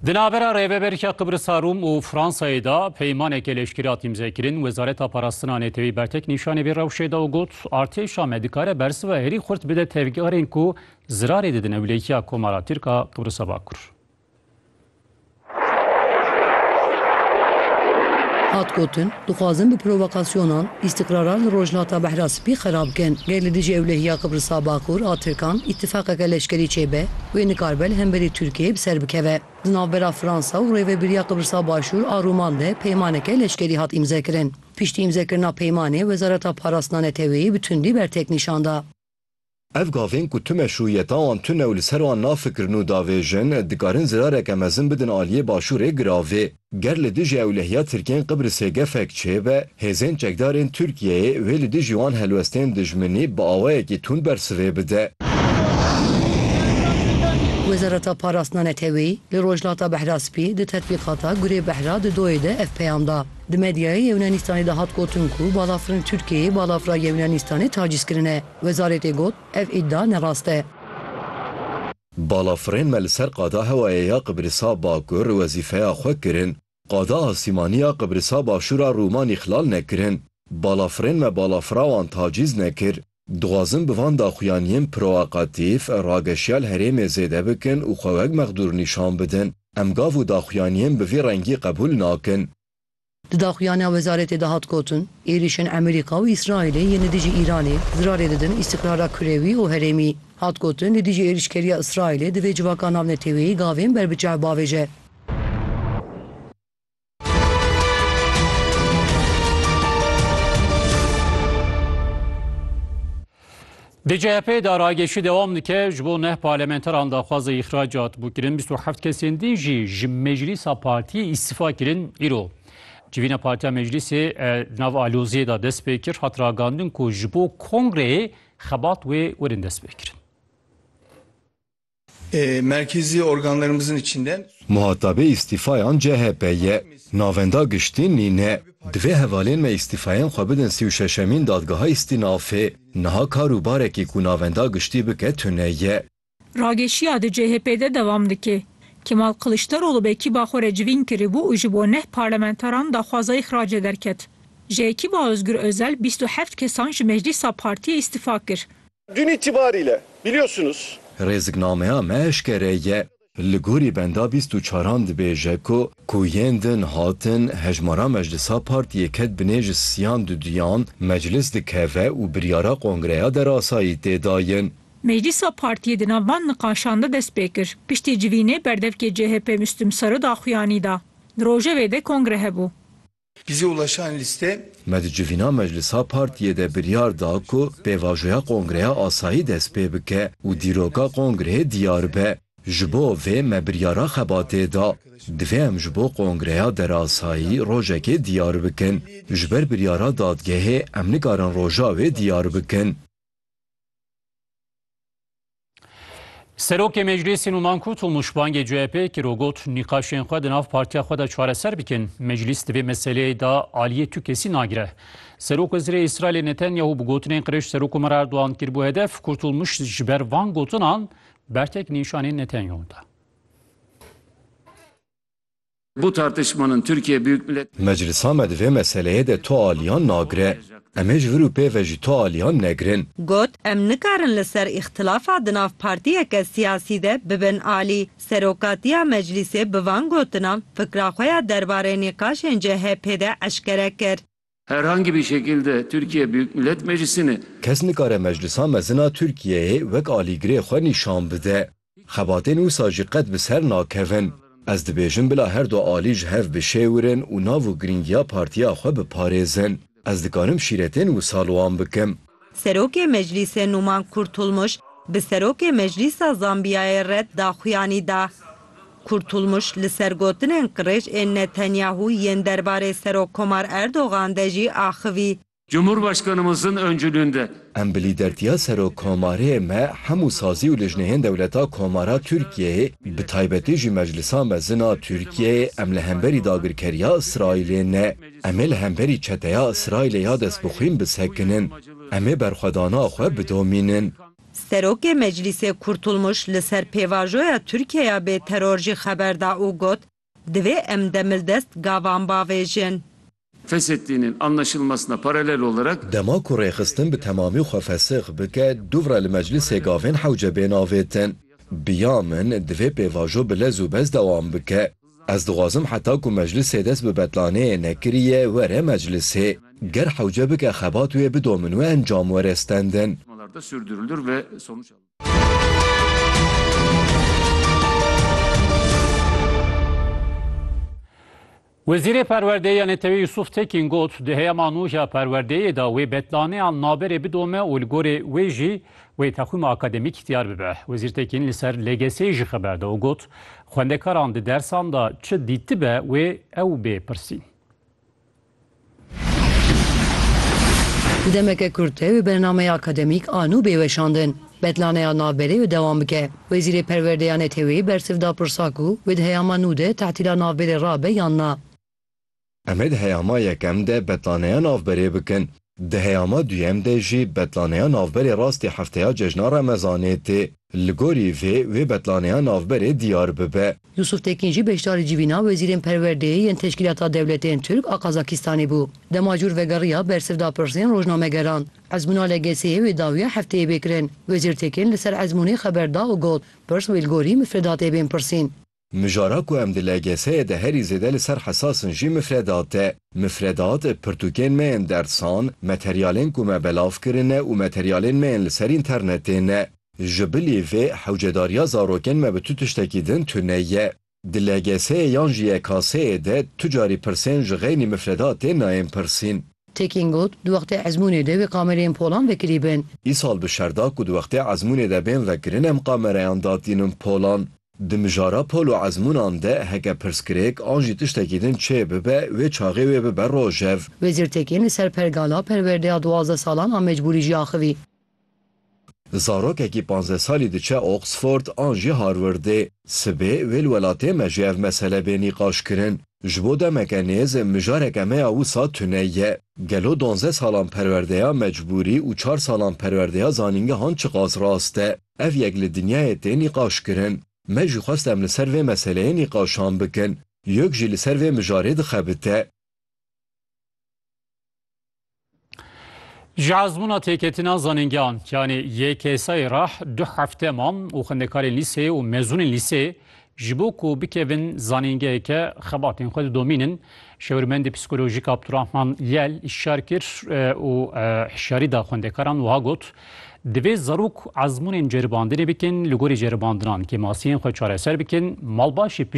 Di navbera Rêveberîya Qibrisa Rûm û Fransayê de peymanekê leşkerî hat îmzekirin. Wezareta Parastina Netewî bertek nîşanê vê rewşê da û got, Artêşa me dikare bersiva herî xurt bide tevgerên ku zirarê didin ewlekiya Komara Tirk a Qibrisa Bakur. Hat gotin, dixwazin bi provokasyonan îstiqraran li Rojhilata Behra Spî xerab bikin. Ger li dijî ewlehiya Qibrisa Bakur a Tirkan îtîfaqeke leşkerî çêbe, wê nikaribe li hemberî Tirkiyeyê bi ser bikeve. Di navbera Fransa û Rêvebiriya Qibrisa Başûr a Rûman de peymaneke leşkerî hat îmzekirin. Piştî îmzekirina peymanê Wezareta Parastina Neteweyî bi tundî bertek nîşan da. Ev gavên ku tu meşrûyeta wan tune û li ser wan nafikirin û davêjin, dikarin zirareke mezin bidin aliyê Başûrê giravê. Ger li dijî ewlehiya Tirkiyên Qibrisê gefek çêbe, hêzên çekdarên Tirkiyeyê wê li dijî wan helwestên dijminî bi awayekî tund bersivê bide. Wezareta Parastina Neteweyî li Rojhilata Behraspî di tetbîqata Gurê Behra di doyê de ev peyam da. Di medyayê Yewnaanistanê de hat gotin ku balafirên Tirkiyeyê balafira Yewnaanistanê tacîz kirine. Wezaretê got, Ev îdia nerast e. Balafirên me li ser Qada Hewayê ya Qibrisa Bakur wezîfeya xwe kirin, Qada Asîmanî ya Qibrisa Başûr a Rûman îxlal nekirin. Balafirên me balafira wan tacîz nekir. Dixwazin bi van daxuyaniyên proakatîf rageşiya li herêmê zêde bikin û xwe wek mexdûr nîşan bidin. Em gav û daxuyaniyên bi vî rengî qebûl nakin. Di daxuyaniya wezaretê de hat gotin, êrîşên Amerîka û Îsraîlê yên li dijî Îranê zirarê didin îstiqrara kurewî û herêmî. Hat gotin, li dijî êrîşkeriya Îsraîlê divê civaka navneteweyî gavên ber bi çav bavêje. Di CHP'ê de ragêşî dewam dike ji bo neh parlamenteran daxwaza îxracat bû kirin 27 kesên din jî ji meclîsa partiyê îstifa kirin îro. Civîna Partiya Meclîsê di nav aloziyê de dest pê kir hat ragandin ku ji bo kongreyê xebat wê werin dest pê kirin. Muhatabê îstîfayan chp ye. Navenda giştî nîne. Divê hevalên me îstîfayên xwe bidin sî û şeşemîn dadgeha îstînafê. Niha kar û barekî ku navenda giştî bike tune ye. Rageşiya di chp de devam dike. Kemal Kiliçdaroglu vekîba xwe re civîn kiribû û ji bo neh parlamentaran daxwaza îxracê derket. Ji ekîba Ozgur Ozel bîst û heft kesan ji meclîsa partiyê îstîfa kir. Dün itibariyle biliyorsunuz. Rêziknameya me eşkere ye. Li gorî benda bîst û çaran dibêje ku ku yên din hatin hejmara meclisa partiyê ket binê ji siyan du duyan meclis dikeve û biryara kongreya derasayî tê dayin. Meclisa partiyê di nav van niqaşan de dest pê kir. Piştî civînê berdevkê CHP Müslüm Sarı daxuyanî da. Di rojevê de kongre hebû. Bize ulaşan liste. Me di civîna meclisa partiyê de biryar da ku pêvajoya kongreya asayî dest pê bike û dîroka kongreyê diyar be. Ji bo vê me biryara xebatê da. Divê em ji bo kongreya derasayî rojekê diyar bikin. Ji ber biryara dadgehê em nikarin roja wê diyar bikin. Serokê Meclîsê Numan Kut û nûşbangê CHP kir û got nîqaşên xwe di nav partiya xwe de çareser bikin. Meclîs di vê meseleyê de aliyê tu kesî nagire. Serokwezîrê Îsraîlê Netanyahu bi gotinên qirêj Serokkomer Erdogan kiribû hedef, Kurtulmuş ji ber van gotinan bertek nîşanê Netanyahu da. Bu tartışmanın Türkiye Büyük Millet Meclisa me di vê meseleyê de tu aliyan nagire. Em hêj vir û pê ve jî tu aliyan negirin. Got, Em nikarin li ser îxtilafa di nav partiyeke siyasî de bibin alî. Serokatiya Meclîsê bi van gotinan fikra xwe ya derbarê nîqaşên CHP'ê de eşkere kir. Herhangî bir şekil de Tirkiye Büyük Millet Meclisi'ni. Kes nikare Meclisa Mezin a Tirkiyeyê wek alîgirê xwe nîşan bide. Xebatên wisa jî qet bi ser nakevin. Ez dibêjim bila her du alî ji hev bişêwirin û nav û girîngiya partiya xwe biparêzin. Ez dikarim şîretên wisa li wan bikim. Serokê Meclîsê Numan Kurtulmuş bi Serokê Meclîsa Zambiyayê re daxuyanî da. Kurtulmuş li ser gotinên qirêj ên Netanyahu yên derbarê Serokkomar Erdogan de jî axivî. Cumhurbaşkanımızın öncülüğünde. Em bi lîdertiya Serokkomarê me hemû sazî û lijneyên dewleta komara Tirkiyeyê bi taybetî jî meclisa mezin a Tirkiyeyê em li hemberî dagirkeriya Îsraîlê ne. Em ê li hemberî çeteya Îsraîlê ya destbixwîn bisekinin. Em ê berxwedana xwe bidomînin. Serokê Meclîsê Kurtulmuş li ser pêvajoya Tirkiyeya bê teror jî xeber da û got, Divê em demildest gavan bavêjin. Fesheddi'nin anlaşılmasına paralel olarak. Dema ku rêxistin bi temamî xwe fesix bike, duvra li Meclîsê gavên hewce bên avêtin. Bi ya min divê pêvajo bi lez û bez dewam bike. Ez dixwazim heta ku meclisê dest bi betlaneyê nekiriye were meclisê. Ger hewce bike xebat wê bidomin û encam were stendin. Wezîrê Perwerdeyê ya Neteweyê Yusuf Tekin got, Di heyama nû ji ya perwerdeyê de wê betlaneyan naberê bidome û li gorî wê jî Wê texwîma akademîk diyar bibe. Wezîr Tekîn li ser LGS'ê jî xeber da û got, Xwendekaran di dersan de çi dîtibe wê ew bê pirsîn. Di demeke kurt de wê bernameya akademîk a nû bê weşandin. Betlaneya navberê wê dewam bike. Wezîrê Perwerdeya NETEW'ê bersiv da pirsa ku wê di heyama nû de tehtîla navberê rabe yan na. Em ê di heyama yekem de betlaneya navberê bikin. Di heyama duyem de jî betlaneya navberê rastî hefteya cejna remezanê tê. Li gorî vê wê betlaneya navberê diyar bibe. Yusuf Tekîn jî beşdarî civîna wezîrên perwerdeyê yên Teşkîlata Dewletên Tirk a Qazakîstanê bû. Dema cûr vegeriya ber siv da pirsên rojnamegeran. Ezmûna LGS'ê wê dawiya hefteyê bê kirin. Wezîr Tekîn li ser ezmûnê xeber da û got, Pirs wê li gorî mifredatê bên pirsîn. Mijara ku em di LGS'ê de herî zêde li ser hesas in jî mifredat e. Mifredat, pirtûkên me yên dersan, materyalên ku me belav kirine û materyalên me yên li ser înternetê ne. Ji bilî vê, hewcedariya zarokên me bi tu tiştekî din tune ye. Di LGS'ê yan jî YKS'ê de tu carî pirsên ji xeynî mifredatê nayên pirsîn. Tekin got, Di wextê ezmûnê de wê qamereyên polan vekirîbin. Îsal bi şer da ku di wextê ezmûnê de bên vekirin em qamerayan datînin polan. Di mijara pol û ezmûnan de heke pirsgirêk an jî tiştekî din çê bibe, wê çaxê wê bibe rojev. Wezîr Tekîn li ser pergala perwerdeya duwazdeh salan a mecbûrî jî axivî. Zarokekî panzdeh salî diçe Oxford an jî Harwardê. Sibê wê li welatê me jî ev mesele bê nîqaşkirin. Ji bo demeke nêz mijareke me ya wisa tune ye. Gelo donzdeh salan perwerdeya mecbûrî û çar salan perwerdeya zanîngehan çiqas rast e? Ev yek li dinyayê tê nîqaşkirin. Me jî xwest em li ser vê meseleyê nîqaşan bikin. Yok jî li ser vê mijarê dixebite. Ji ezmûna têketina zanîngehan, yanî YKSA'yê re du hefte mam û xwendekarên lîseyê û mezûnên lîseyê Ji bo ku bikevin zanîngeheke xebatên xwe didomînin, Şêwirmendê Psîkolojîk Abdurahman Lel îşar kir û hişyarî da xwendekaran wiha got, Divê zarok ezmûnên ceribandinê bikin, li gorî ceribandinan kêmasiyên xwe çareser bikin, malbaşê